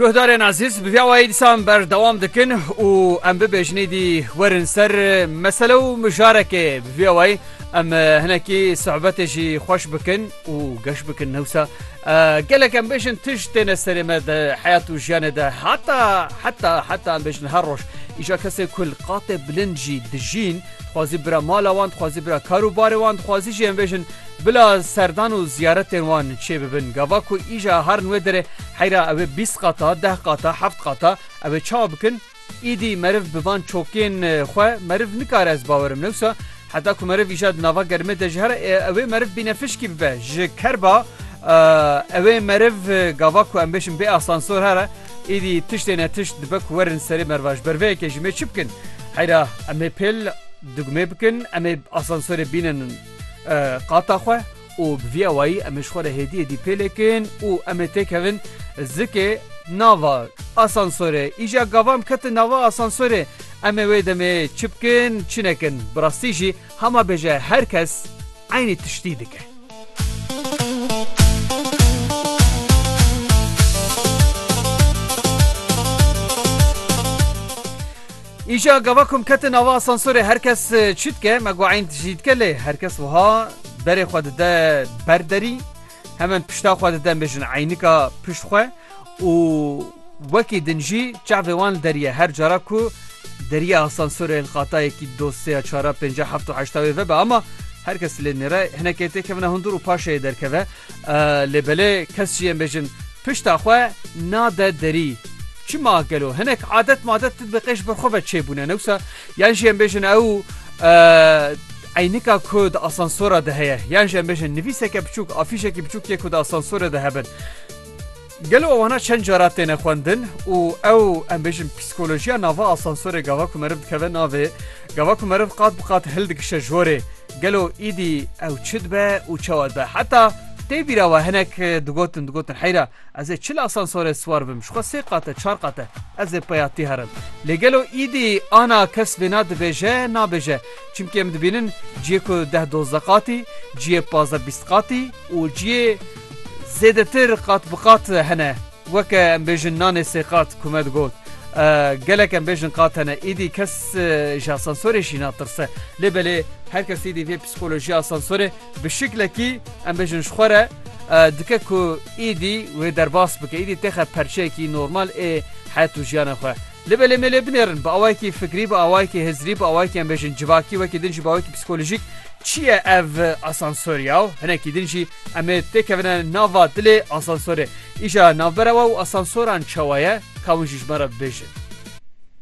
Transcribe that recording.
Guhdarên ezîz bi vî awayî dîsan berdewam dikin û em bibêjinê dî werin ser mesele û mijarekê bi vî awayî em hinekî sohbetê jî xweş bikin û geş bikin newsa gelek em bêjin tij têne serê me de heyat û jiyanê de heta heta heta em bêjin her roj îja kesê ku li qatê bilind jî dijîn dixwazî bira mala wan dixwazî bira kar û barê wan dixwazî jî em bêjin Bila serdan û ziyaretên wan çê bibin. Gava ku îja har nûê derê heyra ewê bîst qata, deh qata, heft qata ewê çawa bikin? Îdî meriv bi van çokên xwe meriv nikare ez bawer im newsa heta ku meriv îja di nava germê de ji here ewê meriv bînefişkî bibe ji ker ba ewê meriv gava ku em bêjin bê asansor here îdî tiştê ne tişt dibe ku werin serê meriva ji ber vê yekê ji mê çi bikin? Heyra emê pêl dugmê bikin emê asansorê bînin. qata xwe û bi vî awayî em ê ji xwe re hêdiyê dî pêlêkin û em ê têkevin zikê nava asansorê. Îja gavan biketin nava asansorê em ê wê demê çi bikin çi nekin. Bi rastî jî hema bêje her kes eynî tiştî dike. Îşa gava ku em ketin ava asansorê her kes çi dike me got eyn tijî dike lê her kes wiha berê xwe dide ber derî hemen pişta xwe dide em bêjin eynika pişt xwe û wekî din jî çavê wan li derî ye her cara ku derî asansorê li qatayekî do sê ya çar ya pênc ya heft û heşt ya wê vebe ama her kes lê nêre hinekê têkevine hundir û paşê yê derkeve Lê belê kes jî yên bêjin pişta xwe nade derî. Çima gelo hinek adet madet di dibe qêj birxwe ve çêbûne ne wisa? Yan jî em bêjin ew eynika ku di asansora de heye yan jî em bêjin nivîseke biçûk afîşekî biçûk yê ku di asansorê de hebin. Gelo wana çend cara têne xwendin û ew em bêjin psîkolojiya nava asansorê gava ku meriv dikeve navê, gava ku meriv qat bi qat hildikişe ji horê, gelo îdî ew çi dibe û çawa dibe? Heta tê bîra we hinek digotin digotin heyra ez ê çil asansorê siwar bim, ji xwe sê qat e, çar qat e, ez ê peya tî herim. Lê gelo îdî ana kes vêna dibêje nabêje? Çimkî em dibînin ciyê ku deh dozde qatî, ciyê pazdeh bîst qatî û ciyê. Zêdetir qat bi qat hene. Weke em bêjin nanê sê qat ku me digot. Gelek em bêjin qat hene. Îdî kes ji asansorê jî natirse. Lê belê her kes îdî vê psîkolojiya asansorê bi şiklekî em bêjin ji xwe re dike ku îdî wê derbas bike. Îdî têxe perçeyekî normal ê het û jiyana xwe. Libelê me lê binêrin, bi awayekî fikrî, bi awayekî hizrî, bi awayekî em bêjin civakî, wekî din jî bi awayekî psîkolojîk çi ye ev asansor ya û hinekî din jî em ê têkevine nava dilê asansorê. Îja navbera we û asansoran çawa ye, ka hûn jî ji me re bibêjin.